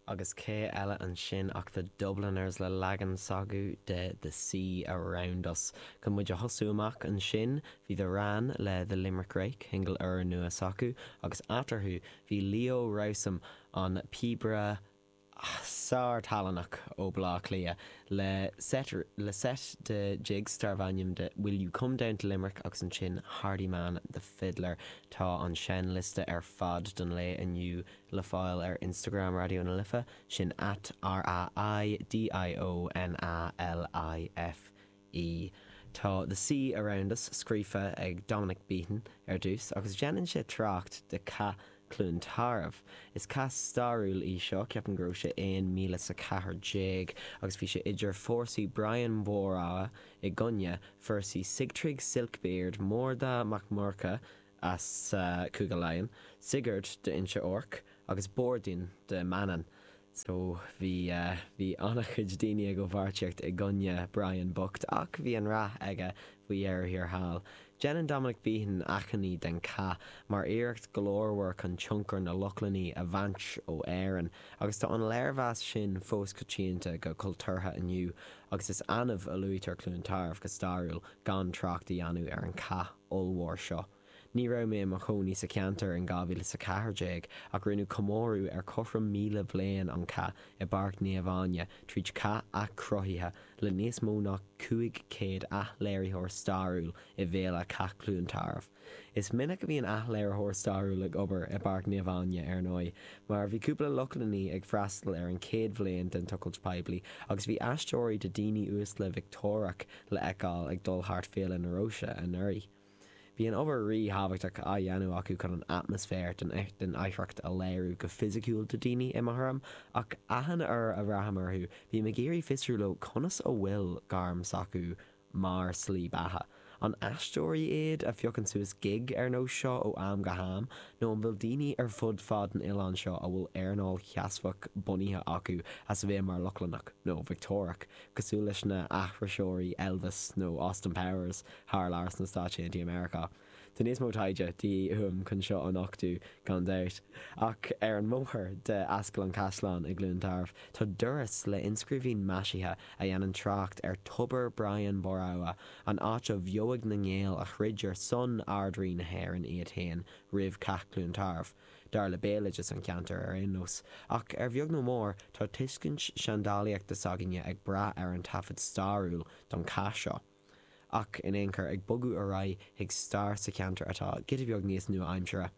Agus cé eile ansin ach The Dubliners le leagan s'acu de The Sea Around Us. Chun muid a thosú amach ansin, bhí The Wran le The Limerick Rake, singil úrnua s'acu, agus eatarthu bhí Leo Rowsome, an píobaire, sár-tallannach ó Bhaile Átha Cliath le set de jigs darbh ainm de Will You Come Down to Limerick agus ansin Hardiman the Fiddler. Tá an seinnliosta ar fad don lae inniu le fáil ar Instagram Raidió na Life, sin at RAIDIO NA LIFE. Tá 'The Sea Around Us' scríofa ag Dominic Behan ar dtús agus déanann sé trácht de Cath Chluain Tarbh. Is cath stairiúil é seo, ceapaim go raibh sé aon míle 's a ceathair déag agus bhí sé idir fórsaí Brian Bhóramha i gcoinne fórsaí Sigtrygg Silkbeard, Mórda Mac Murchadh, as Cúige Laighean, Sigurd d'Inse Orc agus Bordín de Manainn. So bhí, bhí an-chuid daoine i bpáirtíocht i gcoinne Brian bocht ach bhí an rath aige faoi dheireadh thiar thall. Déanann Dominic Behan achainí den cath mar iarracht glórmhar chun tionchar na Lochlannaí a bhaint ó Éirinn agus tá an léirmheas sin fós coitianta go cultúrtha inniu agus is annamh a luaitear Cluain Tarbh go stairiúil gan trácht a dhéanamh ar an cath. ollmhór seo. Ní raibh mé i mo chónaí sa cheantar in 2014 ach rinneadh comóradh ar chothrom míle bhliain an cath i bPáirc Naomh Áine tríd cath athchruthaithe le níos mó ná 500 athléiritheoir stairiúil i bhFéile Cath Chluain Tarbh. Is minic a bhíonn athléiritheoir stairiúil ag obair i bPáirc Naomh Áine, ar ndóigh, mar bhí cúpla Lochlannaigh ag freastal ar an chéad bhliain den tochailt poiblí agus bhí aisteoirí de daoine uaisle Victeoireach le fheiceáil ag dul thart Féile na Róise anuraidh. Bíonn obair rí-thábhachtach á dhéanamh acu chun an atmaisféar den oidhreacht a léiriú go fisiciúil do daoine, i mo thuraim, ach achan uair a bhreathnaím orthu, bím ag iarraidh fiosrú leo conas go bhfuil gairm s'acu mar slí beatha. An aisteoirí iad, a phiocann suas gig ar nós seo ó am go ham, nó an bhfuil daoine ar fud fad an oileáin seo a bhfuil earnáil sheasmhach bunaithe acu as a bheith mar Lochlannach, nó Victeoireach, cosúil leis na aithriseoirí Elvis nó Austin Powers thar lear sna Stáit Aontaithe Meiriceá. Tá níos mó taighde de dhíth uaim chun seo a nochtú, gan dabht. Ach ar an mbóthar de Ascaill an Chaisleáin i gCluain Tarbh, tá doras le inscríbhinn maisithe a dhéanann trácht ar Thobar Brian Bóramha, an áit a bheoigh na nGael a throid ar son Ard-Rí na hÉireann iad féin roimh Cath Cluain Tarbh. dar le béaloideas an cheantair ar aon nós, ach ar bheag nó mór, tá tuiscint seandálaíochta s'againne ag brath ar an taifead stairiúil don chath seo. Ach in aon chor, ag bogadh ar aghaidh chuig stair sa cheantar atá giota beag níos nua-aimsire,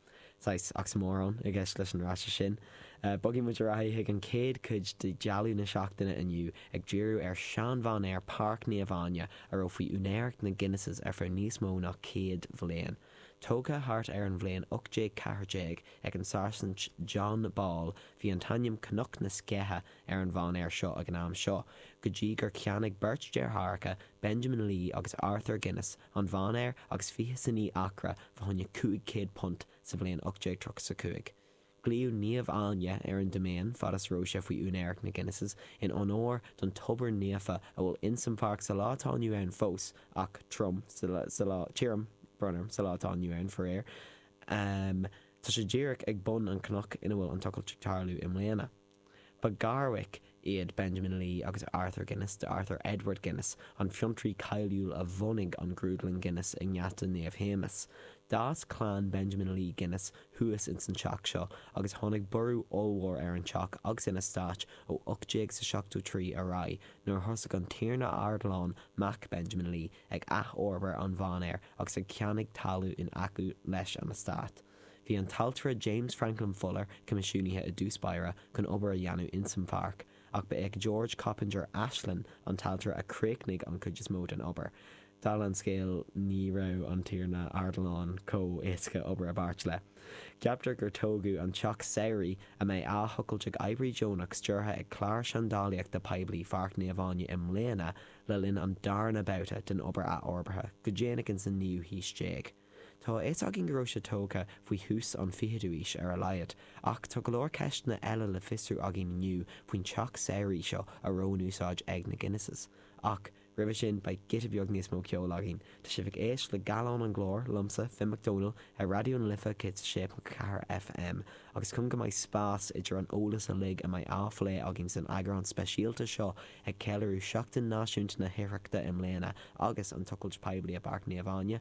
saghas oxymoron i gceist leis an fhrása sin, bogfaidh muid ar aghaidh chuig an chéad chuid de ghallán na seachtaine inniu, ag díriú ar shean-mhainéar Páirc Naomh Áine, a raibh faoi úinéireacht na Guinnesses ar feadh níos mó ná céad bhliain. Tógtha thart ar an bhliain 1814 ag an Sáirsint John Ball, bhí an t-ainm Cnoc na Sceiche ar an mhainéar seo ag an am seo, go dtí gur cheannaigh beirt deartháireacha, Benjamin Lee agus Arthur Guinness, an mhainéar agus fiche 's a naoi acra fa choinne £500 sa bhliain 1835. Glaodh 'Naomh Áine' ar an diméin fad is raibh sé faoi úinéireacht na Guinnesses, in onóir don tobar naofa a bhfuil ins an pháirc sa lá atá inniu ann fós, ach trom, tirim, brón orm, sa lá atá inniu ann, faraor. Tá sé díreach ag bun an cnoc ina bhfuil an tochailt ag tarlú i mbliana. Ba gharmhic iad Benjamin Lee agus Arthur Guinness d'Arthur Edward Guinness, an fiontraí cáiliúil a bhunaigh an Grúdlann Guinness i nGeata Naomh Shéamais. D'fhás clann Benjamin Lee Guinness thuas ins an teach seo agus tháinig borradh ollmhór ar an teach agus an eastát ó 1873 ar aghaidh nuair a thosaigh an Tiarna Ardilaun, mac Benjamin Lee, ag athfhorbair an mhainéir agus ag ceannach talamh in aice leis an eastát. Bhí an t-ailtire James Franklin Fuller coimisiúnaithe i dtús báire chun obair a dhéanamh ins an pháirc, ach ba é George Coppinger Ashlin, an t-ailtire a chríochnaigh an chuid is mó den obair. Dála an scéil, ní raibh an tiarna Ardilaun chomh éasca obair i bpáirt le. Ceaptar gur tógadh an teach samhraidh, a mbeidh á thochailt ag oibrithe deonach stiúrtha ag Clár Seandálaíochta Poiblí Pháirc Naomh Áine i mbliana, le linn an darna babhta den obair athfhorbartha go déanach ins an naoú haois déag. Tá a fhios againn go raibh sé tógtha faoi thús an fichidú aois ar a laghad, ach tá go leor ceisteanna eile le fiosrú againn inniu faoin teach samhraidh seo a raibh in úsáid ag na Guinnesses. Ach roimhe sin beidh giota beag níos mó ceoil againn. Tá sibh ag éisteacht le Gallán an Ghlóir liomsa, Finn Mac Domhnaill, ar Raidió na Life 106.4 FM, agus chun go mbeidh spás idir an eolas uilig a mbeidh á phlé againn san eagrán speisialta seo ag ceiliúradh Seachtain Náisiúnta na hOidhreachta i mbliana agus an tochailt poiblí i bPáirc Naomh Áine,